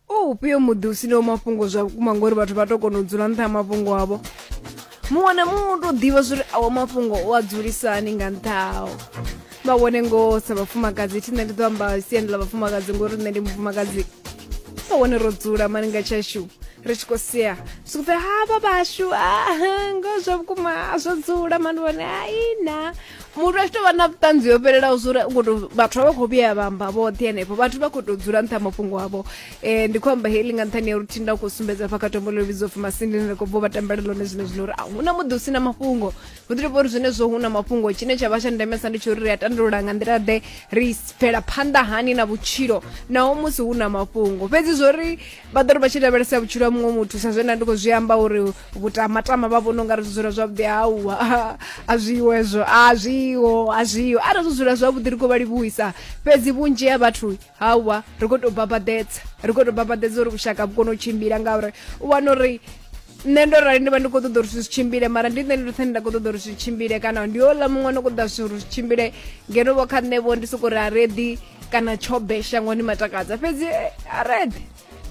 o ufhio muḓi u sinaho mafhungo zwa vhukuma ngori vhathu vha to kona u dzula nṱha ha mafhungo avho muṅwe na muṅwe u to ḓivha zwori awo mafhungo o a dzulisani nga nṱha hao vha vhone ngoho sa vhafumakadzi thi nṋe ndi ḓo amba siani ḽa vhafumakadzi ngori nṋe ndi mufumakadzi sa wane ro dzula mani nga tshashu ri tshi khou sea swikupfe havha vhashu a ngo zwa vhukuma a zwo dzula mani vhone aina muthu a tshi tovha na vhuṱanzi yo fhelelaho zwa uri khoto vhathu vha vha khou vhuya vha amba vhoṱhe henefho vhathu vha khou tou dzula nṱha mafhungo avho um ndi khou amba heli nga nṱhani ya uri thinda khou sumbedza fa kha tombo ḽo vhidzo pfi masindini ri khou bva vha tambela ḽone zwine zwino uri a hu na muḓi u si na mafhungo hu ḓi tovha uri zwenezwo hu na mafhungo tshine tsha vha tsha ndemesa ndi tsho uri ri a tandulula nga nḓila ḓe ri bvela phanḓa hani na vhutshilo naho musi hu na mafhungo fhedzi zwo ri vha ḓo ri vha tshi lavhelesa vhutshilo ha muṅwe muthu sa zwe nda ndi khou zwi amba uri vhutamatama vha vhona ungari zwi dzula zwavhuḓi hauwa a zwiho hezwo a zwiho a zwiho arali zwi dzula zwavhuḓi ri khou vha livhuwisa fhedzi vhunzhi ha vhathu hauwa ri khou tou babaḓedza ri khou tou babaḓedza uri vhushaka vhu kone u tshimbila ngauri u wana uri nṋe ndo rali ndi vha ndi khou ṱoḓa uri zwi si tshimbile mara ndi nṋe ndi ndoṱhe nda khou ṱoḓa uri zwi tshimbile kana ndi ola muṅwe no khou ṱoḓa zwithu uri zwi tshimbile ngeno vho kha nṋe vho ndi soko ri a reḓi kana tshobe shangoni matakadza fhedzi eh, a reḓi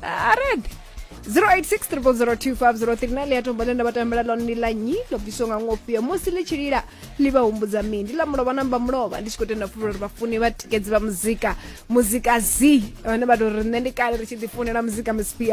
a reḓi 0863002503 ḽi ya tombo ḽe nda vha tambela ḽone ndi ḽa nyi ḽo bviswa nga ngofhio musi ḽi tshi lila ḽi vha humbudza mini ndi ḽa mulovha namba mulovha ndi tshi khou tenda funa uri vhafuni vha tikedzi vha muzika muzika z vhane vha tou ri nṋe ndi kale ri tshi ḓifunela muzika mspi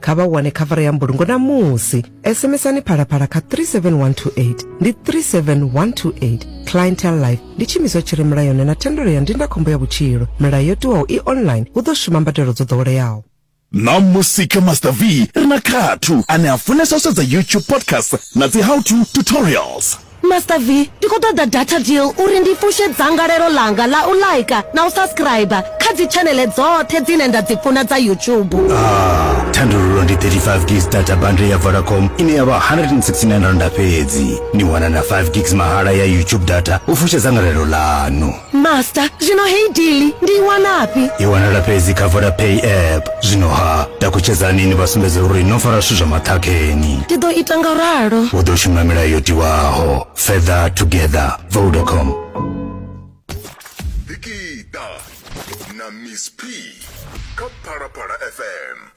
kha vha wane khavara ya mbulungo namusi sms-ani phalaphala kha 37128 ndi 37128 clientel life ndi tshiimiswa tshi re mulayoni na thendelo ya ndindakhombo ya vhutshilo milayo yo tiwaho i online hu ḓo shuma mbadelo dzo ḓoweleaho ṋamusi kha master v ri na khathu ane a funesa u sedza youtube podcast na dzi how to tutorials Master V, ndi khou ṱoḓa data deal uri ndi fushe dzangalelo ḽanga ḽa u like na u subscriber kha dzi tshaneḽe dzoṱhe dzine nda dzi funa dza YouTube. Ah, thandululo ndi 35 gigs data bundle ya Vodacom ine ya vha 169 randa fhedzi. Ni wana na 5 gigs mahala ya YouTube data u fusha dzangalelo ḽanu. master zwino heyi dili ndi i wanafhi i wanala fhedzi kha vodapay app zwino ha takutshedzani ni vha sumbedze uri no fara zwithu zwa maṱhakheni ndi ḓo ita nga ralo u ḓo shuma milayo yo tiwaho feather together vodacom Dikita na Miss P kha Phalaphala FM.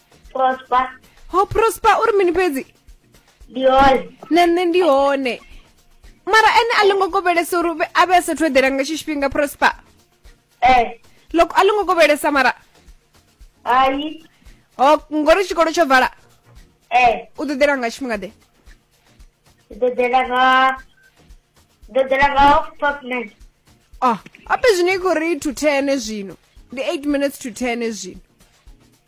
prosper ho prosper uri mini fhedzi ndi hone na nṋe ndi hone mara ene a longo kovhelesa uri uvhe- a vhe a sathu eḓela nga tshi tshifhinga prosper eh loko a longo kovhelesa mara hai ho ngori tshikolo tsho vala eh u ḓo ḓela nga tshifhinga ḓe ndi ḓo ḓela nga ndi ḓo ḓela nga half past nine oh ape zwino i khou ri to ten zwino ndi eight minutes to ten zwino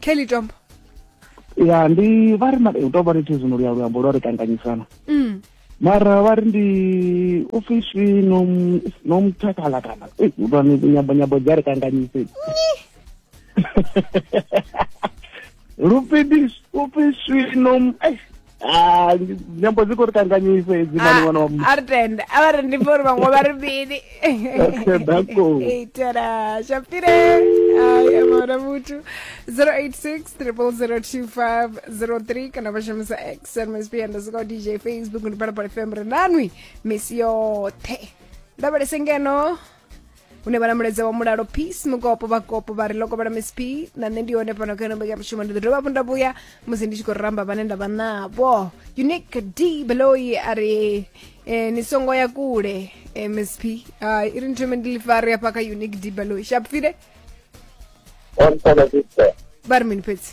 kelly tombo ya ndi vha ri hu tou vha niti zwino luya luambo lwa ri kanganyisana mm. mara vha ri ndi ofisi no mutakala kana nyambo nyambo dzi a ri kanganyise lupidi ofisi no Ah, nyambo dzi khou ri kanganyisa hedzi mani ṅwana wa muthu a ri tenda a vha ri ndi pfa uri vhaṅwe vha ri mini Okay, dako. itela shapire aya mwana muthu 086 kana vha shumisa x msb underscore dj facebook ndi phalaphala fm ri nanwi misi yoṱhe lavhelese ngeno une vha na mulaedza wa mulalo peace mukopo vhakopo vha ri loko vhala miss p na nṋe ndi yone fhano kha nombe ya mushumo ndi ḓo dovha hafhu nda vhuya musi ndi tshi khou ramba vhane nda vha navho unique d beloyi a ri eh, ni songo ya kule eh, miss p uh, i ri ni thome ndi lifari hafha kha unique d beloyi shapfile Hola, Sister. ba ri mini fhedzi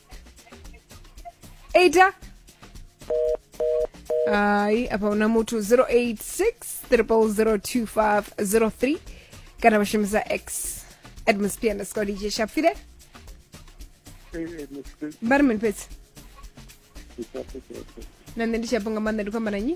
8 hayi apa una muthu 086 002503 kana vha shumisa x admus p underscore dj shafile vha ri mini fhedzi na nṋe ndi tshi afho nga maanḓa ndi khou amba na nyi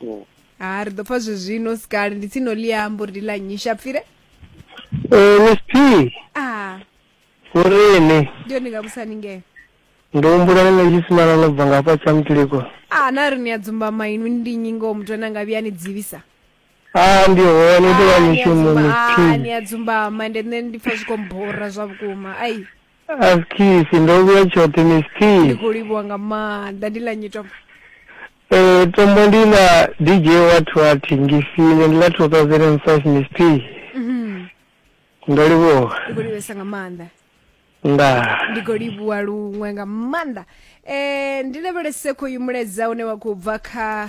Mm. ha ri ḓo pfa zwezwino sikali ndi tsini no liambo ri ndi ḽa nnyi shapfire Eh, Miss P, a vhorine ndi yone nga vhusani ngeo ndi humbula ni na tshisimana no bva nga hafha tsha mutiliko a na ri ni a dzumba mainu ndi nnyi ngoho muthu ane anga vhuya ni dzivisa a ndi hone ndi wa Ah, ni a mishumo dzumba- Miss ah, P. ni a dzumbama ende nṋe ndi pfa zwi khou mbora zwa vhukuma ai askisi ndo vhuya tshoṱhe miss t ndi khou livhuwa nga maanḓa ndi ḽa nyitombo eh tombo ndi ḽa dj wathu a thingisile ndi ḽa 2005 miss t Mhm. ndo livhuwa ndi khou livhesa nga maanḓa ndaa ndi khou livhuwa luṅwe nga maanḓa um ndi lavhelese khoyu mulaedza une wa khou bva kha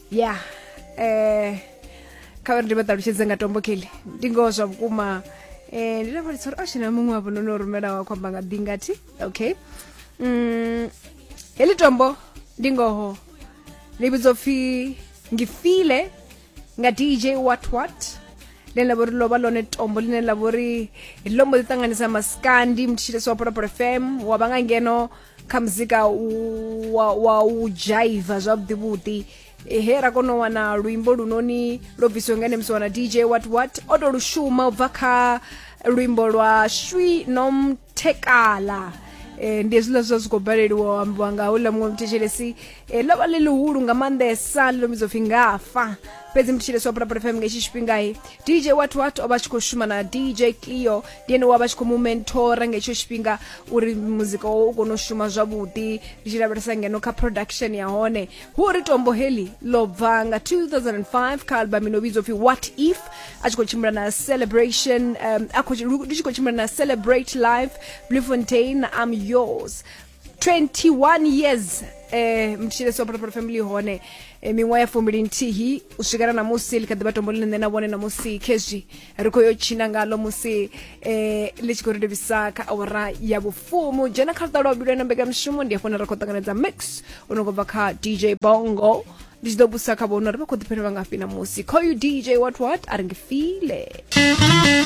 ya eh kha vha ri ndi vha ṱalutshedze nga tombo kelly ndi ngoho zwa vhukuma eh ndi lavhelesa uri ashina oh, muṅwe wavho no no rumela wa khwamba nga ḓingathi okay mm heḽi tombo ndi ngoho ḽi vhidzwa pfhi ngifile nga dj what what ḽine ḽa vhori lovha lone tombo ḽine ḽa vhori ḽo mbo ḓi ṱanganisa masikandi mutshilesi wa pholopolo fm wa vha nga ngeno kha muzika wa, wa u dzhaiva zwavhuḓi vhuḓi he ra kona u wana luimbo lunoni lwo bvisiwe nga ene musi wana dj what what o to lu shuma u bva kha luimbo lwa shwi nomthekala eh, ndi hezwiḽa zwa zwi khou baleliwa ambiwa nga houḽa muṅwe mthetshelesi eh, ḽo vha ḽi ḽihulu nga maanḓesa ḽi ḽo mbidzo pfhi ngafa fhedzi mthetshelesi wa pulapula fm nga itshi tshifhingai dj wat wat o vha tshi khou shuma na dj cleo ndi ene wa vha tshi khou mu mentora nga hetsho tshifhinga uri muzika wawe u kone u shuma zwavhuḓi ri tshi lavhelesa ngeno kha production ya hone hu uri tombo heḽi ḽo bva nga 2005 kha album ino vhidzwa upfi what if a tshi khou tshimbila na celebration um, a khou tshi khou tshimbila na celebrate life blue fontain am yours 21 years eh mtshile so protocol family hone eh, miṅwaha ya fumbili nthihi u swikela na musi ḽi kha ḓivha tombo ḽine nṋe na vhone na musi khezwi ri khou yo tshina ngalo musi eh ḽi tshi khou ri livhisa kha awara ya vhufumu dzhena kha luṱa lwa vhuvhili ena mbekanyamushumo ndi hafho na ri khou ṱanganedza mix u no khou bva kha dj bongo ndi tshi ḓo busa kha vhono ri vha khou ḓipfela vha ngafhi na musi call you dj what what a ri ngifile